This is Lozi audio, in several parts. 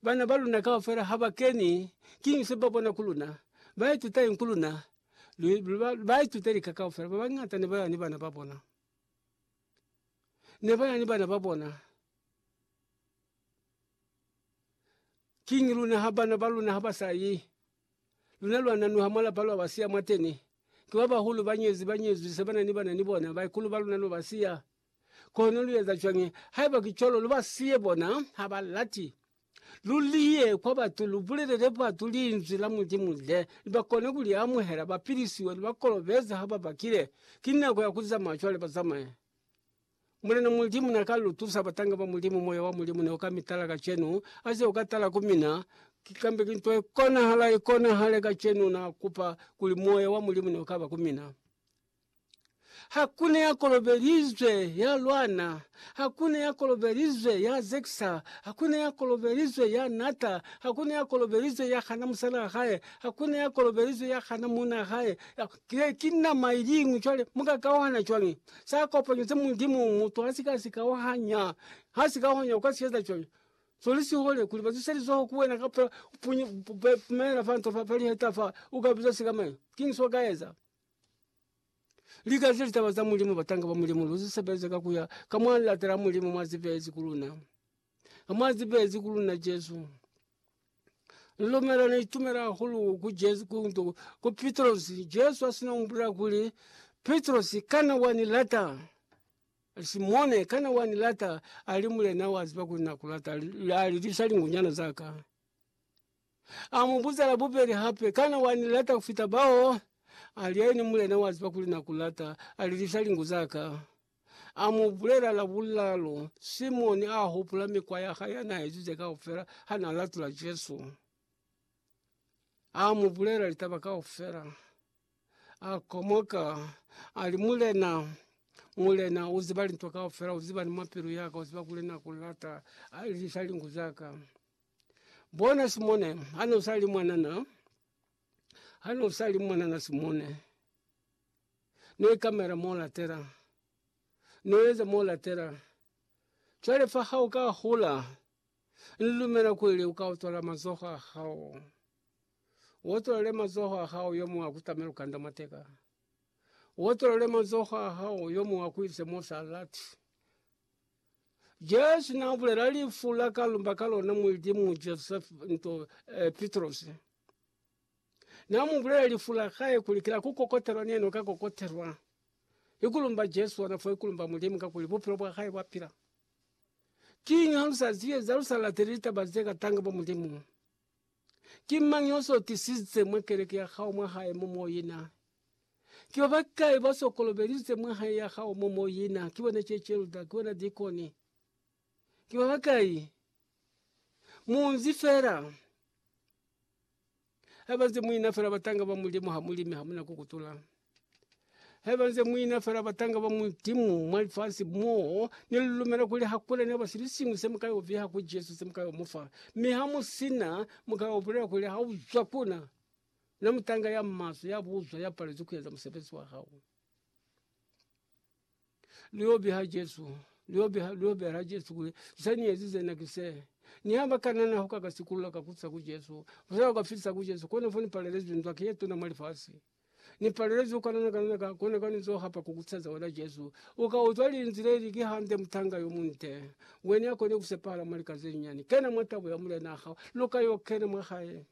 Bana ba luna kaufela ha ba keni, kiñi se ba bona ku luna? Ba ituta eng ku luna? Ba ituta lika kaufela. Ba bañata ne ba ya ni bana ba bona. Ne ba ya ni bana ba bona. Kiñi luna ha bana ba luna ha ba sa yi? Luna lwa nanuha mwa lapa lwa ba siya mwateni. Ki ba bahulu, ba nyezi, ba nyezwi, se ba na ni bana ni bona. Baikulu ba luna no ba siya. Kono lu eza cwañi haiba ki cwalo? Lu ba siye bona, ha ba lati. Lu liye kwa batu, lu bulelele batu Linzwi la Mulimu le ni ba kone ku li amuhela, ba pilisiwe, ni ba kolobeze ha ba bakile. Ki nako ya ku zamaya cwale, ba zamaye. Mulena Mulimu na ka lu tusa, batanga ba Mulimu. Moya wa Mulimu ne u ka mi tala kacenu, a ze u ka tala ku mina. Ki kambe ki nto ye konahala, i konahale kacenu. Na kupa kuli Moya wa Mulimu ne u ka ba ku mina. Hakuna ya kolobelizwe ya lwana, hakuna ya kolobelizwe ya Zeksa, hakuna ya kolobelizwe ya Nata, hakuna ya kolobelizwe ya hana musala wa hae, hakuna ya kolobelizwe ya hana muuna wa hae. Ya- Ki, ki nama iliñwi. Cwale mu ka kauhana cwañi? Sa kopanyo se Mulimu mutu ha si ka si kauhanya, ha si kauhanya, u ka si eza cwañi? So li sihole kuli ba zise lizoho ku wena kapa u punya, u pumelela fa nto fa, fa liheta fa, u ka biza sikamañi? Kiñi so ka eza? Lika ze litaba za Mulimu, batanga ba Mulimu, lu zi sebeza ka ku ya ka mwa lilata la Mulimu mwa zi beezi ku luna, ka mwa zi beezi ku luna Jesu. Ni lumela, ni itumela hahulu ku Jesu, ku nto, ku Pitrosi. Jesu ha si no mbulela kuli, Pitrosi, kana wa ni lata? Simone, kana wa ni lata? Ali, Mulena, wa ziba kuli na ku lata, ali, ali, lisa lingunyana za ka. A mu buza la bubeli hape, Kana wa ni lata ku fita bao? A li, Haini, Mulena, wa ziba kuli na ku lata. A lilisa lingu za ka. A mu bulela la bulalu, Simoni a hupula mikwa ya hae ya na ezize kaufela ha na latula Jesu. A mu bulela litaba kaufela. A komoka, a li, Mulena, Mulena, u ziba lintu kaufela, u ziba ni mwa pilu ya ka, u ziba kuli na ku lata. A lilisa lingu za ka. Bona Simone, hane usali mwanana, hane usali mwanana Simone, ne kamera molatela, noeza molatela, cwale fa ha uka hola, nlumela kuli uka otola mazoho a hao, uotole mazoho a hao yo mwa kutamela ukanda mateka, uotole mazoho a hao yo mwa kuise mo salati. Jesu na bulela lifu la ka lumba ka lona Mulimu Joseph nto eh, Petrosi. Na mu bulela lifu la hae kuli kila ku kokotelwa neno ka kokotelwa. Ikulumba Jesu wana fo ikulumba Mulimu ka kuli bupilo bwa hae bwa pila. Kinga lusa ziye za lusa la telita bazeka tanga bo Mulimu. Ki mañi oso tisize mwa keleke ya hao mwa hae mo mo yina? Ki ba bakai baso kolobelize mwa hae ya hao mo mo yina? Ki bona che chelda, ki bona dikoni, ki ba bakai? Munzi fela. Haiba nze muina fela batanga ba Mulimu ha mulimi hamuna kukutula. Haiba nze muina fela batanga ba Mulimu mwa lifasi mo, ni lu lumela kuli hakuna naba silisiñwi se muka yo viha ku Jesu, se muka yo mufa. Mi ha mu sina, muka yo bulela kuli, Ha uzwa ku na, na mutanga ya maswe, ya buzwa, ya palezwi kueza musebezi wa hao. Lu yo biha Jesu, lu yo biha, lu yo bela Jesu kuli, Ze ni ezize na ki se. Ni ha ba ka na, na ho ka ka sikulula ka kusa ku Jesu. Fyo ka fisa ku Jesu, kono fo ni palelezwi nzwaki ye tuna mwa lifasi. Ni palelezi ukanana kanana ka kona ka nizo hapa kukutsaza wena Jesu. Uka uzwa linzile ili kihande mutanga yo munte. Wene akone kusepahala mwa lika zenyani. Kena mwa tabo ya mulena hao. Luka yo kena mwa hae.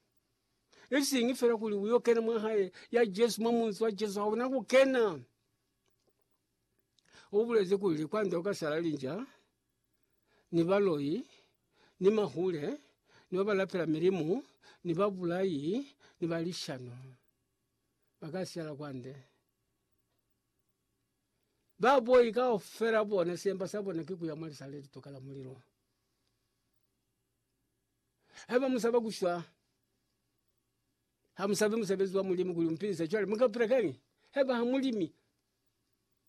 Isingi fela kuli uyo kena mwa hae ya Jesu mwa munzi wa Jesu hauna kukena. Ubulezi kuli kwande ukasala linja. ni baloi, ni mahule, ni ba ba lapela milimu, ni babulai, ni ba lishano, ba ka siyala kwande. Ba boi kaufela bona semba sa bona ki ku ya mwa lisa le lituka la mulilo. Haiba mu saba ku shwa, ha mu sabi musebezi wa Mulimu kuli u mu pilise, cwale mu ka pila kañi haiba ha mu limi?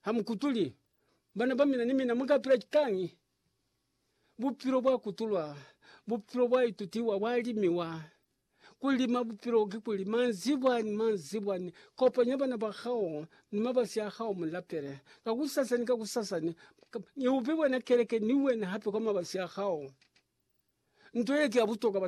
Hamukutuli bana ba mina ni mina muka pila kani bupilo bwa kutulwa bupilo bwa itutiwa bwa limiwa kulima bupilo ki kulima nzibwa ni manzibwa ni kopanya bana ba kao ni mabasi ya hao mulapele kakusasa ni kakusasa ni kab niupibwe na keleke ni wena hatu kama basi ya hao. Ntoye tiya butoka bata